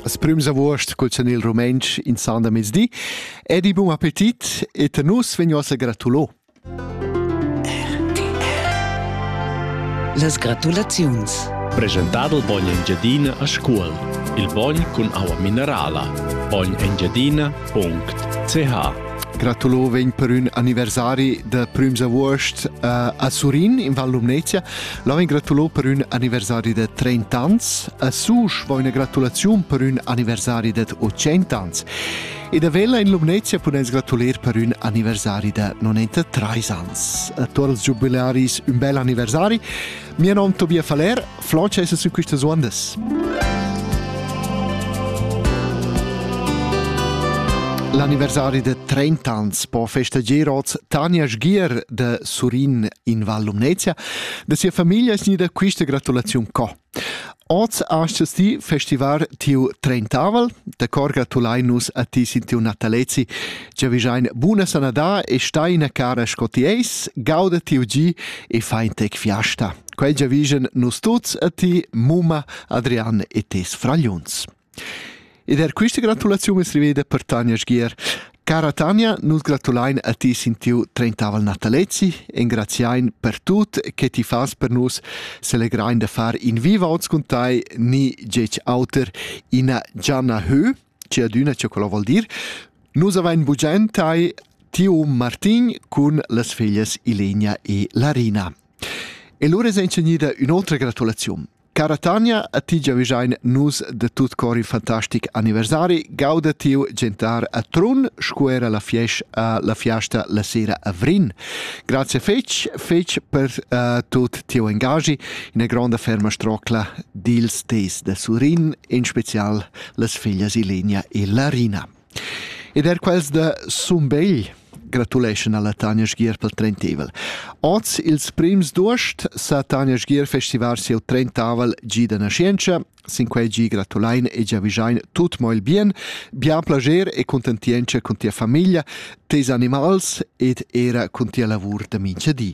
As prüms avuost cul senil rumentsch in san da mezdi ed i bun appetit et nus vegnos a gratulo. Las gratulaziuns. Presentado il bogn Engiadina a scuol. Il bogn cun aua minerala. bognengiadina.ch Gratulo vegn per ün anniversari da prüms avuost uh, a Surin in Val Lumnezia. La vegn gratulo per ün anniversari da 30 ans, a Susch vo üna gratulaziun per ün anniversari da 80 ans. E da Vella in Lumnezia puness gratuler per ün anniversari da 93 ans. A tutti i giubilaris un bel anniversari. Mio nome è Tobias Faller, Francesco su queste ondas. L'anniversari de 30 ans po festagier oz Tanja Sgier de Surin in Val Lumnezia Da sia famiglia es gnida quista gratulaziun co. Oz astgas ti festivar tiu trentavel, da cor gratulain nus a ti sin tiu natalezi, che vijain buna sanadà e stai ina cara sco ti eis, gauda tiu gi e fai tec fiasta. Quel giavigen nus tuts a ti, mumma, Adrian e tes fragliuns. Ed er quista gratulaziun es riveda per Tanja Sgier. Cara Tanja, nus gratulain a ti sin tiu trentaval natalezi, engraziain per tut che ti fas per nus, selegrain da far in viva oz cun tai ni gec auter ina Gianna Hö, ci adüna ce quello vuol dir. Nus avain bugiain tai tiu Martin cun las feglias Ilenia e Larina. E lura es incegnida ün'otra gratulaziun. Cara Tanja, a ti giavischein nus de tut cor in fantastic anniversari. Gauda tiu gentar a Trun, sco era la fiesta, uh, la fiasta la sera a Vrin. Grazie fetg, fetg per uh, tut tiu engagi, ina gronda ferma strocla dils teis de Surin, in special las figlias Ilenia e Larina. Ed er quels da Sumbegl gratuleschan alla Tanja Sgier pel trenteivel. Oz ils prims d'uost sa Tanja Sgier festivar sieu trentavel gi da nascientscha. Sin quei gi gratulain e giavischain tut mo il bien, bien plager e contentientscha cun tia famiglia, teis animals ed era cun tia lavur da mincha di.